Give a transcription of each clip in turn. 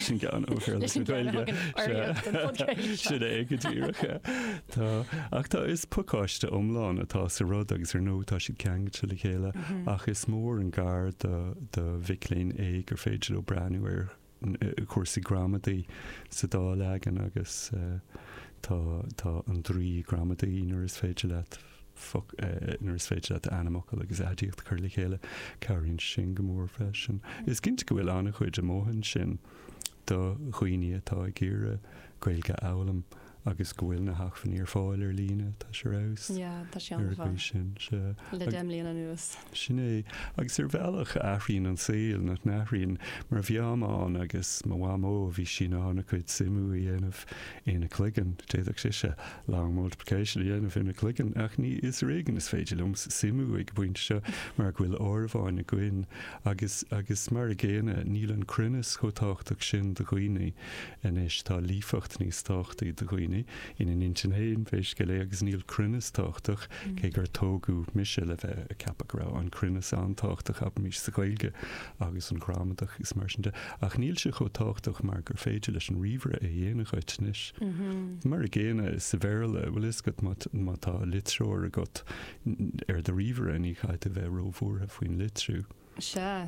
Sin ceann ó Foras na Gaeilge, sea, sin é go díreach. Tá, ach tá, is pacáiste iomlán atá sa rud agus ar ndóigh tá siad ceangailte le chéile ach is mór an gar do, do mhic léinn é gur féidir leo breathnú ar chúrsaí gramadaí sa dá leagan agus tá, tá an draoi gramadaí uair is féidir leat foc, nuair is féidir leat ainmfhocal agus aidiacht a chur le chéile, cabhraíonn sin go mór freisin. Is cinnte go bhfuil an-chuid amuigh ansin do dhaoine atá ag iarraidh Gaeilge a fhoghlaim agus go bhfuil na hacmhainní ar fáil ar líne, tá sé ar fheabhas. Yeah, tá siad ar fáil. Sin, le deich mbliana anuas. Sin é. Agus ar bhealach, athraíonn an saol, nach n-athraíonn? Mar shampla, mo mham, agus mo mhamó, bhí sí in ann a cuid suimiú a dhéanamh ina cloigeann, d'fhéadfadh sise long multiplication a dhéanamh ina cloigeann, ach ní, is ar éigean is féidir liom suimiú ag an bpointe seo, mar go bhfuil áireamháin againn. Agus, agus mar a gcéanna, níl an cruinneas chomh tábhachtach sin do dhaoine anois, tá líofacht níos tábhachtaí do dhaoine, ina n-intinn féin, pé scéal é, agus níl cruinneas tábhachtach, cé gur tógadh mise le bheith ag ceapadh go raibh an cruinneas an-tábhachtach abraimis sa Ghaeilge, agus an ghramadach is mar sin de, ach níl sé chomh tábhachtach mar gur féidir leis an ríomhaire é a dhéanamh dhuit anois. Mar a gcéanna sa Bhéarla, bhfuil a fhios agat, má tá litreoir agat ar do ríomhaire, ní chaithfidh tú bheith róbhuartha faoin litriú. Sea.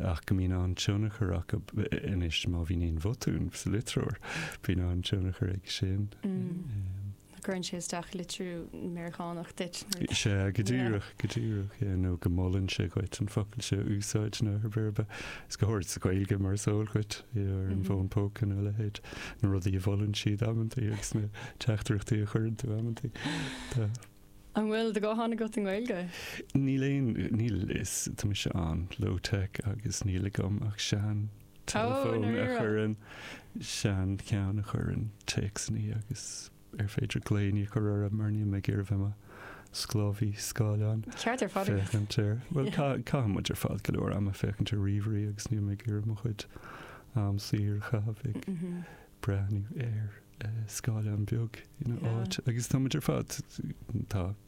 Ach go mbíonn an-tionchar acu anois má bhíonn aon bhotún sa litreoir, bíonn an-tionchar aige sin. cuireann sé isteach litriú Meiriceánach duit. Sea, go díreach, go díreach, yeah, nó go molann sé dhuit an focal seo a úsáid nó pé ar bith. Is go háirid sa Ghaeilge mar is eol dhuit, yeah, ar an bhfón póca nó a leithéid, na rudaí a mholann siad amantaí agus na teachtaireachtaí a chuireann tú amantaí. Tá. An bhfuil do ghuthán agat i nGaeilge? Níl aon, níl is, tá mise an low tech agus níl agam ach sean teileafón a chuireann seancheann a chuireann téacsannaí agus ar féidir glaoinní a chur orthu mar níl mé ag iarraidh bheith mo sclábhaí scáileáin. Ceart ar fad agat. Féachaint ar, bhuel tá, caithfidh muid ar fad go leor ama féachaint ar ríomhairí agus níl mé ag iarraidh mo chuid am saor a chaitheamh ag breathnú ar scáileán beag ina áit agus tá muid ar fad tá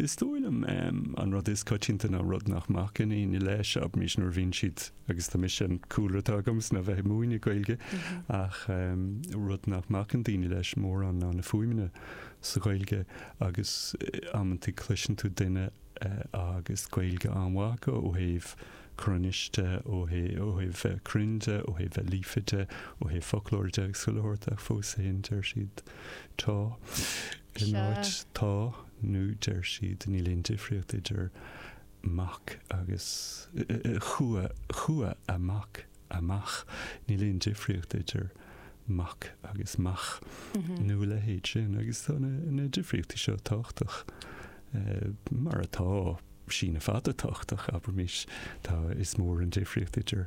Is dóigh liom, an rud is coitianta ná rud nach mbacann éinne leis, abraimis nuair a bhíonn siad, agus tá mise, an cúlra atá agam is ná bheith ag múineadh Gaeilge, ach rud nach mbacann daoine leis mórán ná na fuaimeanna sa Ghaeilge agus amantaí cloiseann tú duine agus Gaeilge an-mhaith acu ó thaobh cruinnis de, ó thaobh bheith cruinn de, ó thaobh bheith líofa de, ó thaobh foclóra de agus chuile shórt ach fós féin deir siad Tá. In áit atá nó deir siad, níl aon difríocht idir mac agus chuaigh, chuaigh an mac amach, níl aon difríocht idir mac agus mach, nó a leithéid sin, agus tá na difríochtaí seo tábhachtach mar atá, síneadh fada tábhachtach, abraimís, tá, is mór an difríocht idir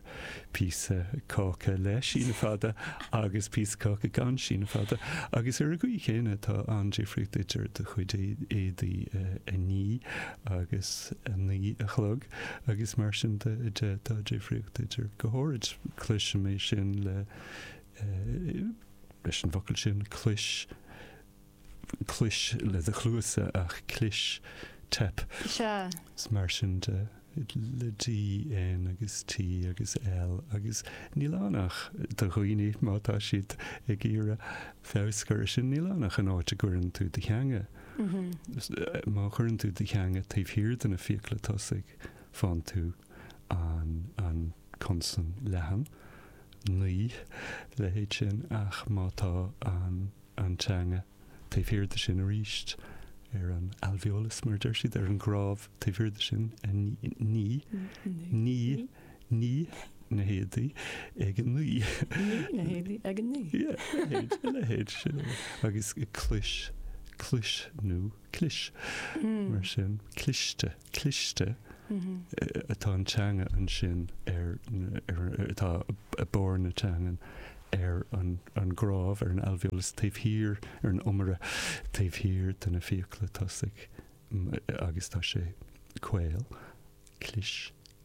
píosa cáca le síneadh fada agus píosa caca gan síneadh fada, agus ar an gcaoi chéanna tá an-difríocht idir do chuid éadaí a ní agus a naoi a chlog, agus mar sin de, tá difríocht idir go hard. Cloisim é sin le, leis an bhfocal sin, clois. clois le do chluasa ach clis, teip. Sea. Is mar sin de le D, N agus T agus L agus níl ann ach do dhaoine má tá siad ag iarraidh feabhas a chur ar sin, níl ann ach an áit a gcuireann tú do theanga. Má chuireann tú do theanga taobh thiar de na fiacla tosaigh, faigheann tú an consan leathan, nigh, a leithéid sin ach má tá an. an teanga. Taobh thiar de sin arís, ar an alveolus, mar a deir siad, ar an gcnámh, taobh thiar de sin, ní, ní, ní, na héadaí ag an ní. Na héadaí ag an ní. A leithéid sin. Agus clis, clois nó clis, hmm. mar sin, cliste. cliste atá an teanga ansin ar atá barr na teangan ar an an gcnámh ar an alveolus taobh thiar ar an iomaire taobh thiar de na fiacla tosaigh agus tá sé caol clis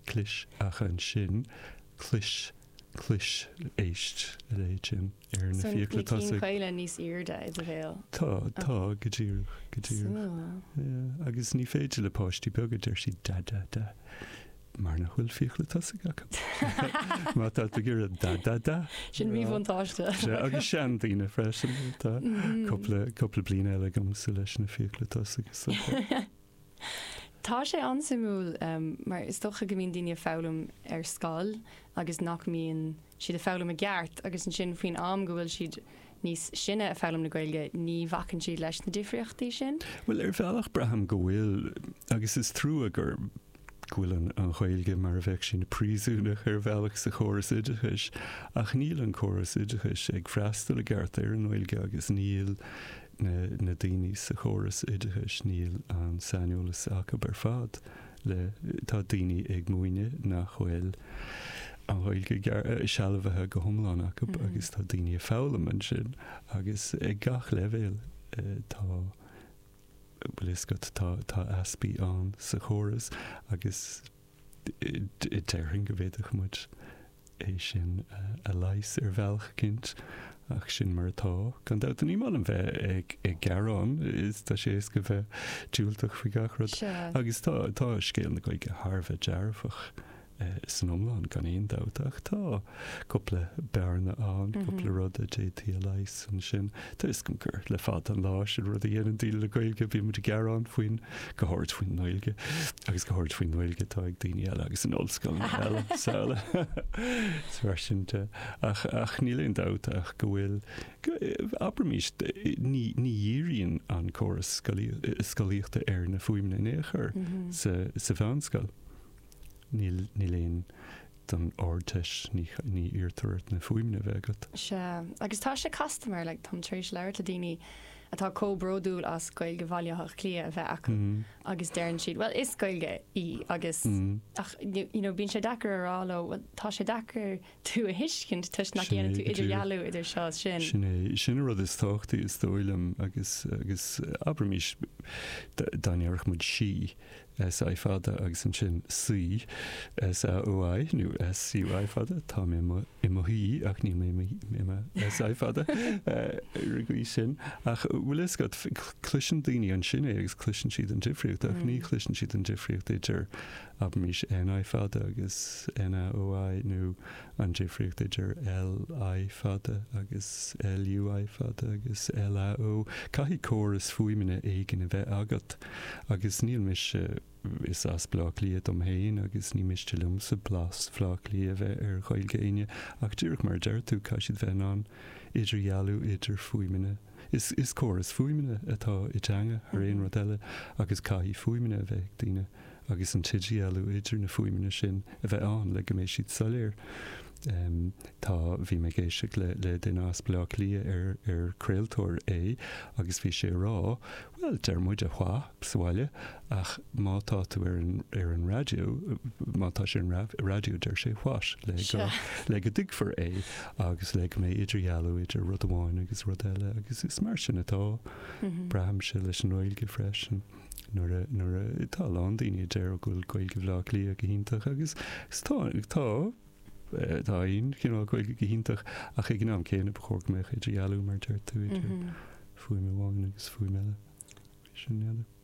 clis ach ansin clois clois éist leithéid sin ar na Son, fiacla na cinn tosaigh. caola níos aoirde i do bhéal. Tá, tá, go díreach, go díreach. Suimiúil. Ie, agus ní féidir le páistí beaga, deir sí, da, da, da, mar nach bhfuil fiacla tosaigh acu. Má tá tú ag iarraidh da, da, da, Sin a rá. mhíbhuntáiste. Sea, agus seandaoine freisin, tá cúpla, cúpla bliain eile agamsa leis na fiacla tosaigh is dócha. Tá sé an-suimiúil mar is dócha go mbíonn daoine ag foghlaim ar scoil agus nach mbíonn siad ag foghlaim i gceart agus ansin faoin am go bhfuil siad níos sine ag foghlaim na Gaeilge ní bhacann siad leis na difríochtaí sin. Bhuel ar bhealach braithim go bhfuil agus is trua gur go bhfuil an Ghaeilge mar a bheadh sí ina príosúnach ar bhealach sa chóras oideachais ach níl an córas oideachais ag freastal i gceart ar an nGaeilge agus níl na daoine sa chóras oideachais níl an saineolas acu ar fad le Tá daoine ag múineadh nach bhfuil an Ghaeilge sealbhaithe go hiomlán acu agus tá daoine ag foghlaim ansin agus ag gach leibhéal tá bhfuil a fhios agat tá tá easpaí ann sa chóras agus Déarfainn go bhféadfadh muid é sin a leigheas ar bhealach eicínt, ach sin mar atá, gan dabht. Ní maith liom bheith ag gearán, is tá sé éasca bheith diúltach faoi gach rud. Agus tá tá scéal na Gaeilge thar a bheith dearfach san iomlán, gan aon dabht, ach tá. cúpla bearna ann, cúpla rud a d'fhéadfaí a leigheas ansin. Tá a fhios agam gur le fada an lá an rud a dhéanann daoine le Gaeilge, bhí muid ag gearán faoin, go háirid faoin nGaeilge, agus go háirid faoin nGaeilge atá ag daoine eile agus in ollscoileanna eile is araile. Is mar sin de. Ach, ach níl aon dabht ach go bhfuil, abraimís, ní, ní dhíríonn an córas scolaíochta ar na fuaimeanna in aon chor sa, sa mheánscoil. Níl, don Ardteist, ní iarrtar ort na fuaimeanna a bheith agat. Sea, agus tá sé casta mar, like, táim tar éis labhairt le daoine atá chomh bródúil as Gaeilge Bhaile Átha Cliath a bheith acu agus deireann siad, bhuel, is Gaeilge í agus, ach, you know, bíonn sé deacair a rá leo, bhuel, tá sé deacair tú a thuiscint toisc nach ndéanann tú idirdhealú idir seo is sin. Sin é, sin an rud is tábhachtaí is dóigh liom agus, agus abraimís, dá ndéarfadh muid sí, SI fada agus ansin saoi, SAOI, nó SUI fada, tá mé i mo shuí ach níl mé i mo SI fada ar an gcaoi sin. Ach an bhfuil a fhios agat, cloiseann daoine ansin é agus cloiseann siad an difríocht ach ní chloiseann siad an difríocht idir abraimis NI fada agus NAOI, nó an difríocht idir LI fada agus LUI fada agus LAO, caithfidh córas fuaimeanna éigin a bheith agat, agus níl mise, is as Bleá Cliath dom féin agus ní miste liomsa blas Bhleá Cliath a bheith ar Ghaeilge éinne, ach díreach mar a deir tú, caithfidh siad bheith in ann idirdhealú idir fuaimeanna. Is córas fuaimeanna atá i dteanga thar aon rud eile agus caithfidh fuaimeanna a bheith ag daoine agus an t-idirdhealú idir na fuaimeanna sin a bheith ann le go mbeidh siad soiléir. Tá, bhí mé ag éisteacht le duine as Baile Átha Cliath ar craoltóir é agus bhí sé ag rá, Bhuel, deir muid wha' sa bhaile, ach má tá tú ar an, ar an raidió, má tá sé ar an raidió, deir sé what? le go, le go dtuigfear é agus le go mbeidh idirdhealú idir rud amháin agus rud eile agus is mar sin atá, braithimse leis an nGaeilge freisin, nuair a, nuair atá a lán daoine a deir go bhfuil Gaeilge Bhleá Cliath go hiontach agus, is tá, tá, Tá aon chineál Gaeilge go hiontach, ach ag an am céanna ba chóir go mbeadh idirdhealú, mar a deir tú, idir fuaim amháin agus fuaim eile.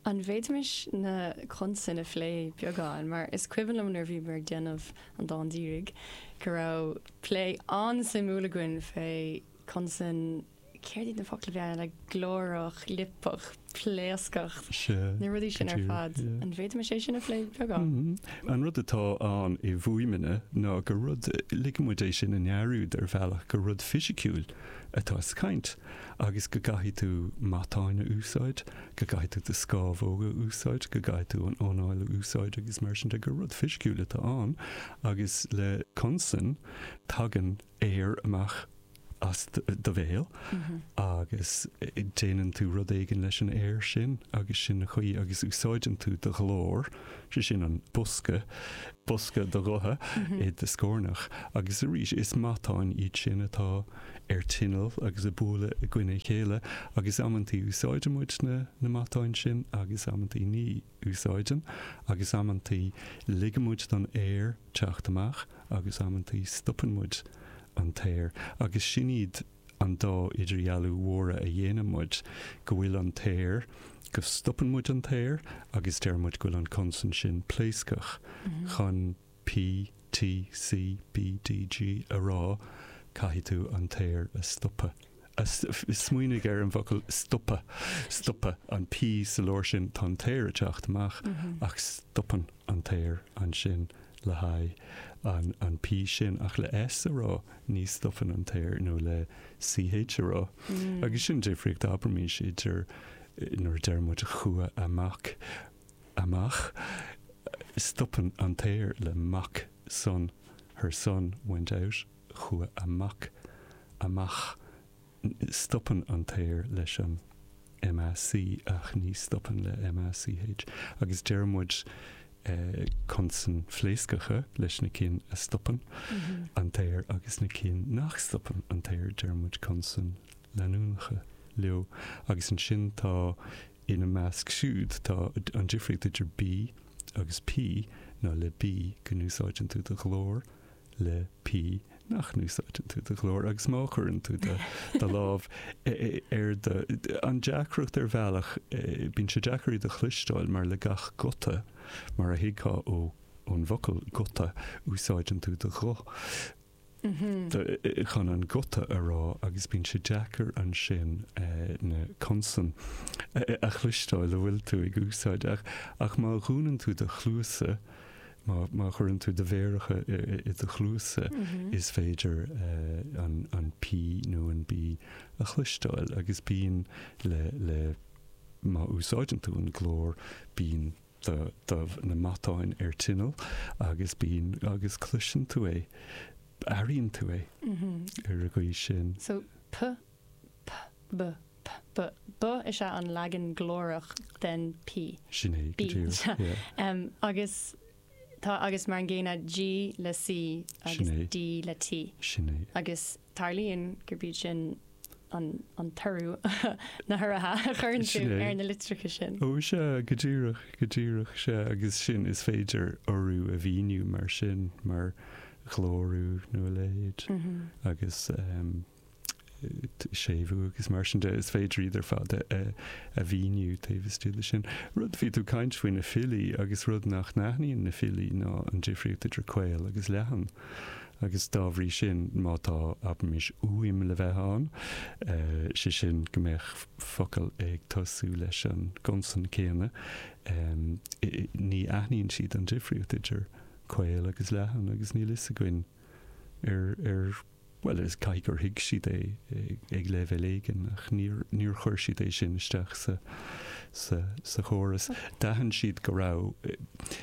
An bhféadfaimis na consain a phlé beagán? Mar is cuimhin liom nuair a bhíomar ag déanamh an dán díreach go raibh plé an-suimiúil againn fé consan céard iad na focla a bhí ann, like glórach, liopach, pléascach, na rudaí sin ar fad. An bhféadfadh sé sin a phlé beagán? Mm-hmm. An rud atá ann i bhfuaimeanna ná gur rud ligfeadh muid é sin i ndearúd ar bhealach gur rud fisiciúil atá sa chaint agus go gcaithfidh tú matáin a úsáid, go gcaithfidh tú do scámhóga a úsáid, go gcaithfidh tú an anáil a úsáid agus mar sin de gur rud fisiciúil atá ann agus le consan tagann aer amach as do bhéal agus déanann tú rud éigin leis an aer sin agus sin an chaoi agus úsáideann tú do ghlór, sé sin an bosca, bosca do ghutha i do scornach agus arís is matáin iad sin atá ar tinneall agus ag bualadh i gcoinne a chéile agus amantaí úsáideann muid na matáin sin agus amantaí ní. úsáideann, agus amantaí ligeann muid don aer teacht amach agus amantaí stopann muid an t-aer, agus sin iad an dá idirdhealú mhóra a dhéanann muid, go bhfuil an t-aer, go stopann muid an t-aer, agus deir muid go bhfuil an consan sin pléascach chun. PTCBDG a rá, caithfidh tú an t-aer a stopadh, a, smaoinigh ar an bhfocal stopadh, stopadh an P sa lár sin, tá an t-aer ag teacht amach ach stopann an t-aer ansin le haghaidh an, an P sin, ach le S a rá ní stopann an t-aer, nó le CH a rá. Agus sin an difríocht, abraimís idir nuair a deir muid chuaigh amach, amach, stopann an t-aer le mac, son, her son went out chuaigh a mac amach, stopann an t-aer leis an MAC ach ní stopann le MACH agus deir muid consain phléascacha leis na cinn a stopann an t-aer agus na cinn nach stopann an t-aer deir muid consain leanúnacha leo agus ansin tá Ina measc siúd tá an difríocht idir B agus P ná le B go n-úsáideann tú do ghlór, le P nach n-úsáideann tú do ghlór agus má chuireann tú do lámh ar do. An deacracht ar bhealach, bíonn sé deacair iad a chloisteáil mar le gach guta, mar a thuigfeá ón bhfocal guta, úsáideann tú do ghuth. chun an guta a rá agus bíonn sé deacair ansin na consain a chloisteáil atá tú ag úsáid. Ach má dhúnann tú do chluasa, má chuireann tú do mhéaracha i do chluasa, is féidir an P nó an B a chloisteáil agus bíonn le, le má úsáideann tú an glór, bíonn. do, do na matáin ar tinneall agus bíonn agus cloiseann tú é, airíonn tú é ar an gcaoi sin. So p, p, b, p, b, b is ea an leagan glórach den p. Sin é, go díreach, yeah. Agus tá, agus mar an gcéanna, g le c agus d le t. Sin é. Agus. tarlaíonn gurb iad sin an t-urú, na hurraithe a chuireann tú ar na litreacha sin. Ó, sea, go díreach, go díreach, sea, agus sin, is féidir urú a mhíniú mar sin, mar ghlórú nó a leithéid, agus séimhiú agus mar sin de, is féidir iad ar fad a mhíniú taobh istigh de sin. Rud, bhí tú ag caint faoi na filí, agus rud nach n-aithníonn na filí ná an difríocht idir caol agus leathan, agus dá bhrí sin, má tá, abraimis, uaim le bheith ann, sé sin, go mbeadh focal ag tosú leis an gconsan céanna, ní aithníonn siad an difríocht idir caol agus leathan agus níl a fhios againn ar, ar, bhuel, is caithfidh gur thuig siad é ag leibhéal éigin ach níor, níor chuir siad é sin isteach sa, sa, sa chóras. D'aithin siad go raibh.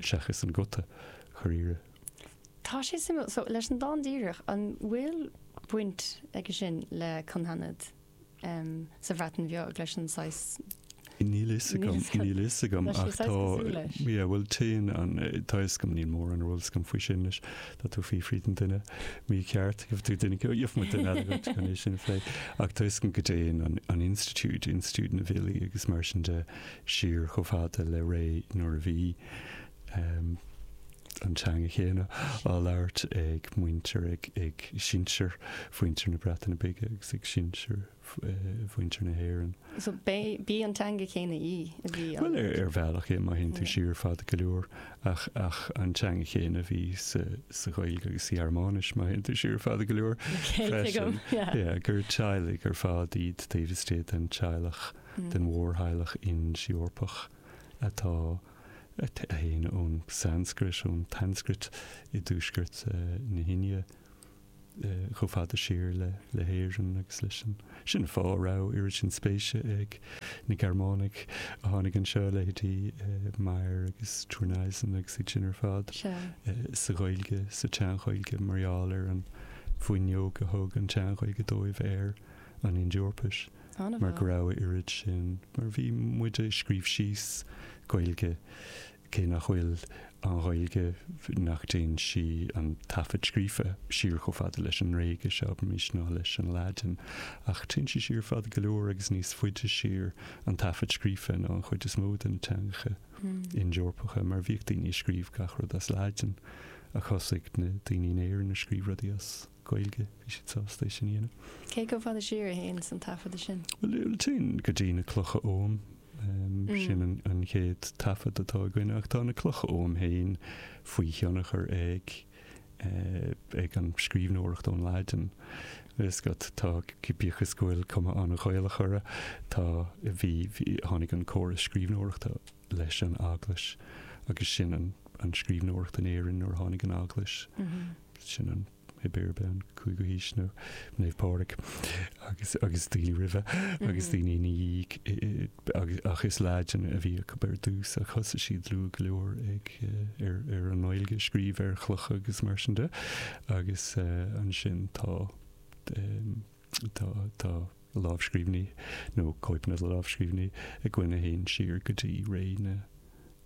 seachas an guta dháiríre. Tá sé suimiúil. So, leis an dán díreach, an bhfuil baint aige sin le cynghanedd sa Bhreatain Bheag, leis an saghas. Níl a fhios agam, níl a fhios agam, ach tá. Leis an saghas cosúil leis. Yeah, bhuel, téann an, tá a fhios agam, níl mórán ar eolas agam faoi sin leis. Tá tú fiafraí den duine mícheart, gheobhaidh tú duine, gheobhaidh muid duine eile dhuit chun é sin a phlé. Ach tá a fhios agam go dtéann an, an institiúid, institiúid na bhfilí agus mar sin de, siar chomh fada le ré nuair a bhí an teanga chéanna á labhairt ag muintir, ag sinsir mhuintir na Breataine Bige agus ag sinsir mhuintir na hÉireann. So b'í an teanga chéanna í a bhí á labhairt? Bhuel, ar bhealach, má théann tú siar fada go leor, ach an teanga chéanna a bhí sa Ghaeilge agus sa Ghearmáinis, má théann tú siar fada go leor, freisin. Gur teaghlaigh ar fad iad taobh istigh den teaghlach. den mhórtheaghlach Ind-Eorpach atá, a théann ón Sanscrait, ón tSanscrait i dtuaisceart na hIndia chomh fada siar le hÉirinn agus leis an. Sin an fáth a raibh oiread sin spéise ag na Gearmánaigh a tháinig anseo, leithéidí Meyer agus Thurneysen agus iad sin ar fad, sa Ghaeilge, sa tSean-Ghaeilge, mar gheall ar an bhfuinneog a thug an tSean-Ghaeilge dóibh ar an Ind-Eorpais. mar go raibh a oiread sin, mar a bhí muide ag scríobh síos, Gaeilge, cé nach bhfuil an Ghaeilge, nach dtéann sí, an taifead scríofa, siar chomh fada leis an nGréigis, abraimis, nó leis an Laidin, ach téann sí siar fada go leor agus níos faide siar, an taifead scríofa, nó an chuid is mó de na teangacha Ind-Eorpacha, mar bhíodh daoine ag scríobh gach rud as Laidin, ach thosaigh na daoine in Éirinn ag scríobh rudaí as. Gaeilge, bhí siad sásta é sin a dhéanamh. Cé chomh fada siar a théanns an taifeadadh sin? Bhuel, téann go dtí na Clocha Oghaim, sin an chéad taifead atá againn, ach tá na Clocha Oghaim féin faoi thionchar ag, ag an scríbhneoireacht ón Laidin. Is go, tá, bíodh is go bhfuil cuma an-Ghaelach orthu, tá, bhí, tháinig an córas scríbhneoireachta leis an Eaglais agus sin an scríbhneoireacht in Éirinn nuair a tháinig an Eaglais. sin an, pé ar bith, an cúigiú haois Naomh Pádraig agus agus daoine roimhe agus daoine ina dhiaidh agus ach is Laidin a bhí acu ar dtús ach thosaigh siad luath go leor ag ar ar an nGaeilge a scríobh ar chlocha agus mar sin de agus ansin tá Tá lámhscríbhinní, nó cóipeanna de lámhscríbhinní, againn a théann siar go dtí ré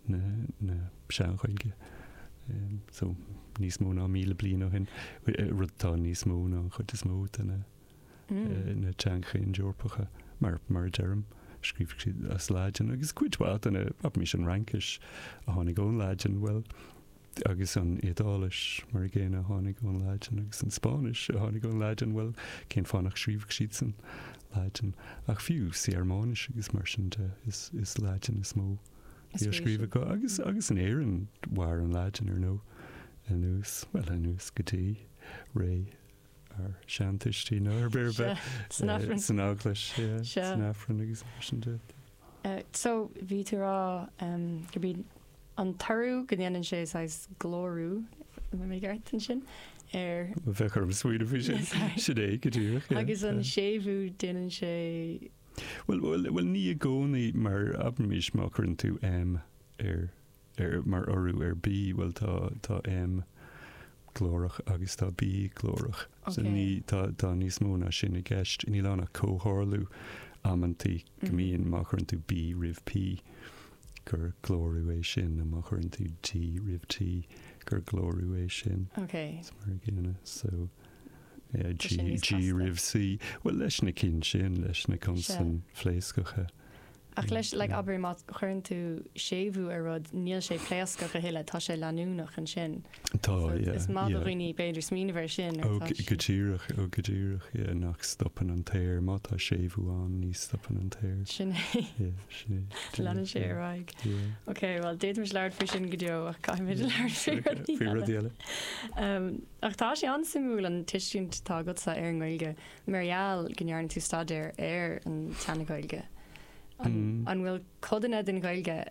na Sean-Ghaeilge, so níos mó ná míle bliain ó shin, rud atá níos mó ná an chuid is mó de na teangacha Ind-Eorpacha. Mar a deirim, scríobhadh siad as Laidin, agus cuid mhaith de na, abraimis an Fhraincis a tháinig ón Laidin? Bhuel. Agus an Iodáilis? Mar an gcéanna, a tháinig ón Laidin. Agus an Spáinnis? A tháinig ón Laidin. Bhuel, cén fáth nach scríobhadh siad san Laidin? Ach fiú sa Ghearmáinis agus mar sin de, is Laidin is mó a bhí á scríobh acu. Agus, agus in Éirinn, mhair an Laidin, ar ndóigh, anuas, bhuel, anuas go dtí ré ár seantuistí, nó pé ar bith. San Aifreann. San Eaglais, yeah. San Aifreann agus mar sin de. So, bhí tú ag rá, um, go bí an toradh go ndéanann sé saghas glórú, an bhfuil mé ceart ansin? ar. bheith orm smaoineamh faoi sin. Sin é go díreach. Agus an séimhiú déanann sé. Bhuel, bhuel, bhuel ní i gcónaí mar abraimís má chuireann tú M ar mar urú ar B, bhuel tá tá M glórach agus tá B glórach. So ní tá níos mó ná sin i gceist. Níl ann ach comhtharlú amantaí go mbíonn má chuireann tú B roimh P. gur glórú é sin nó má chuireann tú D roimh T gur glórú é sin. Ok. Is mar a gcéanna. So, yeah, G, G roimh C. Bhuel, leis na cinn sin, leis na consain phléascacha. Ach leis, like, abair, má chuireann tú séimhiú ar rud, níl sé pléascach a thuilleadh, tá sé leanúnach ansin. Tá, yeah. Is maith do dhaoine b'fhéidir smaoineamh air sin ar Tá sé. Go díreach, oh go díreach, yeah, nach stopann an t-aer, má tá séimhiú ann ní stopann an t-aer. Sin é. Yeah, sin é. Leanann sé ar aghaidh. Yeah. Ok, bhuel, d'fhéadfaimis labhairt faoi sin go deo ach caithfimid labhairt faoi rudaí eile. Faoi rudaí eile. Umm, ach tá sé an-suimiúil an tuiscint atá agatsa ar an nGaeilge, mar gheall go ndearna tú staidéar ar an tseana-Ghaeilge. An, an bhfuil codanna den Ghaeilge,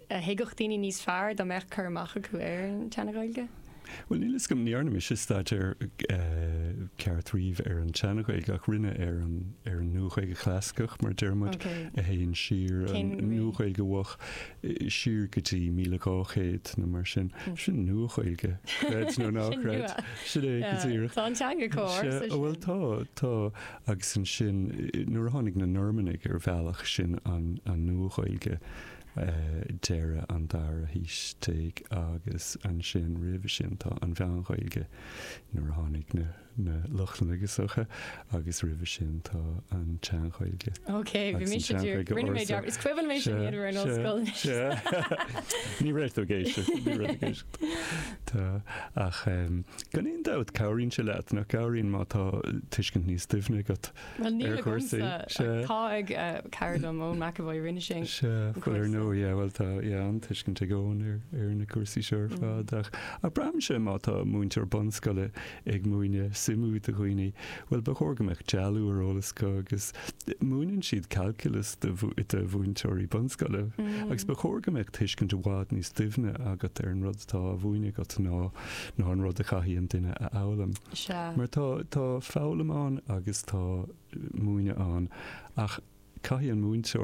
a thuigfeadh daoine níos fearr dá mbeadh cur amach acu ar an tSeana-Ghaeilge? Bhuel, níl 'fhios agam, ní dhearna mise staidéar ceart riamh ar an tSeana-Ghaeilge, ach rinne ar an, ar an Nua-Ghaeilge Chlasaiceach, mar a deir muid, a théann siar, an Nua-Ghaeilge Mhoch, siar go dtí míle dhá chéad nó mar sin. Sin Nua-Ghaeilge, creid nó ná creid. Sin é go díreach. Tá an teanga cóir sa sin. Ó bhuel tá, tá. Agus ansin, nuair a tháinig na Normannaigh ar bhealach, sin an, an Nua-Ghaeilge. deireadh an dara haois déag agus ansin roimhe sin tá an Mheán-Ghaeilge nuair a tháinig na na Lochlannaigh go socha agus roimhe sin tá an tSean-Ghaeilge Ok, bhí agus an mise ag iarraidh, Sean-Ghaeilge rinne mé ag Ársa. iarraidh, is cuimhin mé sin iad a bhfuair an Sea, ollscoil anois. sea. Ní raibh tú ag éisteacht, ní raibh tú ag éisteacht. Tá, ach em, gan aon dabht, cabhraíonn sé leat, nach gcabhraíonn má tá tuiscint níos doimhne agat Bhuel níl agamsa, ach tá ag cara liom, Eoin McEvoy, rinne sé an cúrsa. Sea, bhuel ar ndóigh, yeah, bhuel tá, yeah, an-tuiscint ag Eoin ar na cúrsaí seo ar fad ach, ach braitheimse má tá múinteoir bunscoile ag múineadh suimiú do dhaoine, bhuel ba chóir go mbeadh dealú ar eolas acu agus múineann siad calculus do, do mhúinteoirí bunscoile agus ba chóir go mbeadh tuiscint i bhfad níos doimhne agat ar an rud atá á mhúineadh agat ná, ná an rud a chaithfidh an duine a fhoghlaim. Sea. Mar tá, tá foghlaim ann agus tá múineadh ann ach caithfidh an múinteoir.